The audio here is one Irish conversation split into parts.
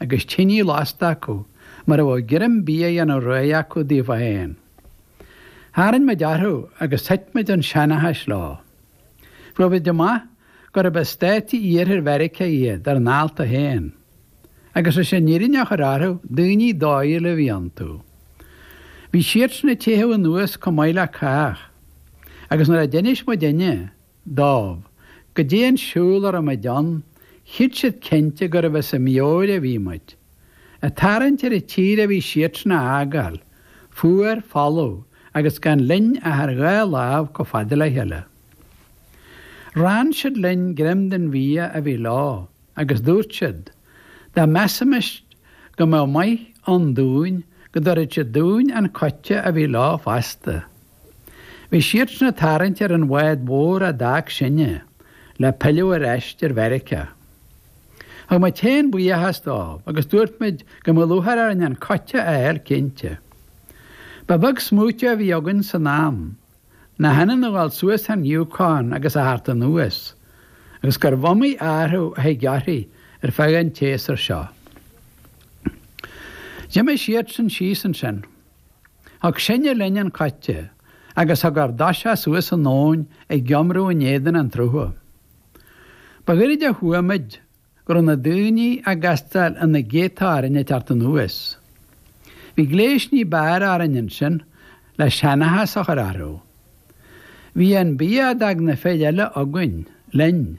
agus tinidh lasta acu mar a bheadh greim bia á dhéanamh réidh acu daofa fhéin. Tharraing muid orthu agus thuit muid 'un seanchais leo. Fuair muid amach gurb as stáiti iarthair Mheiriceá iad ár ndálta fhéin. Agus leis an fhírinne a chur orthu, daoine dóighiúla a bhí iontu. Bhí siadsan ag teitheadh anuas comh maith le cách. Agus nuair a d'inis muidinne, dóibh goidé an siúl a raibh muid ann, chreid siad cinnte gurbh as a meabhair a bhí muid. Ag tarraingt ar an tír a bhí siadsan a fhágáil, fuar, folamh agus gan linn ach ár dhá lámh chomh fada le chéile. Rann siad linn greim den bhia a bhí leo agus dúirt siad, dá measaimis go mbeadh maith ann dúinn, go dtabharfadh siad dúinn an coite a bhí leo fosta. Bhí siadsan ag tarraingt ar an bhád mhór a d'fhág sinne le pilleadh ar ais ar Mheiriceá. Thug muid fhéin buíochas dóibh agus dúirt muid go mbeadh lúcháir orainn an coite a fháil cinnte. Ba bheag smaoitiú a bhí againn san am, nach ionann a dhul suas an Yukon agus a theacht anuas, agus gurbh iomaí athrú a thig uirthi ar feadh an tséasúir seo. D'imigh siadsan síos ansin. Thug sinne linn an coite agus thug ár dtoiseach suas an abhainn ag iomramh in éadan an tsrutha. Ba ghoirid a chuaigh muid go raibh na daoine ag castáil ina gcéadta orainn ag teacht anuas. Bhí gléas ní b'fhearr orainn ansin le seanchas a chur orthu. Bhí an bia d'fhág na fir eile againn, linn.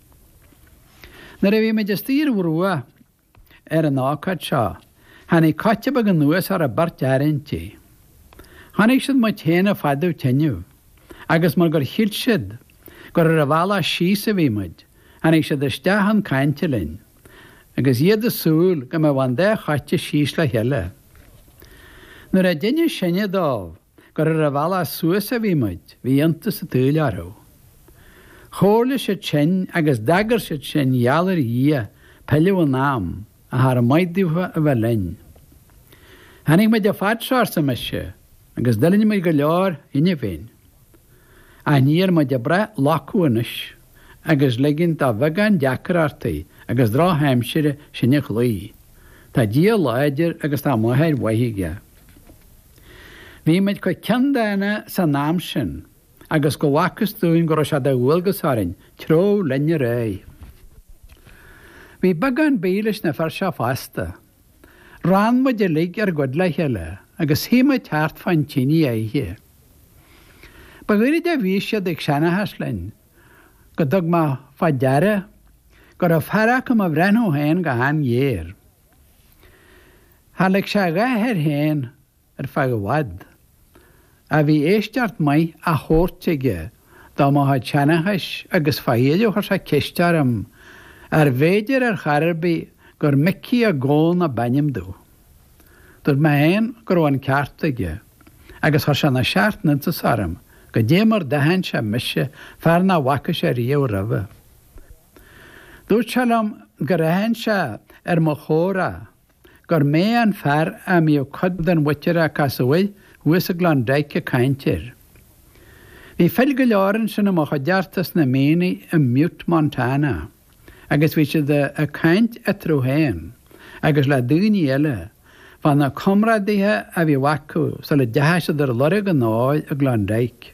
Nuair a bhí muid istigh ar an bhruach ar an ócáid seo tháinig coite beag anuas agus beirt fhear inti. Chonaic siad muid féin ag fadú teineadh agus mar gur shíl siad gur ar an bhealach síos a bhí muid tháinig siad isteach chun cainte linn agus iad ag súil go mbeadh an dá choite síos le chéile. Nuair a d'inis sinne dóibh, Gur ar an bhealach suas a bhí muid, bhí iontas an tsaoil orthu. Chomhairligh siad sinn agus d'agair siad sinn gheall ar Dhia pilleadh in am, ach cha raibh maith daofa a bheith linn. Tháinig muid an fad seo, arsa mise, agus d'fhuilinn muid go leor anbhuain. Ach níl muid ag brath loiceadh anois agus ligint do bheagán deacrachtaí agus drochaimsire sinn a chloí. Tá Dia láidir agus tá máthair mhaith aige. Bhí muid chomh ceanndána san am sin agus go bhfacthas dúinn go raibh sé de dhualgas orainn treabhadh linn ar aghaidh. Bhí beagán bídh leis na fir seo fosta. Rann muid uilig ár gcuid le chéile agus shuigh muid thart fán tine oíche. Ba ghoirid a bhí siad ag seanchas linn go dtug mé fá deara go raibh fear acu 'mo bhreathnú féin go han-ghéar. Char lig sé a dhath air féin ar feadh i bhfad. Ach bhí éisteacht maith á thabhairt aige do mo chuid seanchais agus fá dheireadh chuir sé ceist orm arbh fhéidir ar chor ar bith gur Micí Mac Gabhann ab ainm domh. Dúirt mé féin go raibh an ceart aige agus chuir sé na seacht n-iontas orm goidé mar d'aithin sé mise, fear nach bhfaca sé riamh roimhe. Dúirt sé liom gur aithin sé ar mo chomhrá gur mé an fear a mbíodh cuid den mhuintir a casadh air thuas i gClondyke ag caint air. Bhí fir go leor ansin i mo chuideachta sna mianaigh i mButte, Montana, agus bhí siad ag caint eatarthu féin agus le daoine eile fá na comrádaithe a bhíodh acu sula dteachaidh siad ar lorg an óir i gClondyke.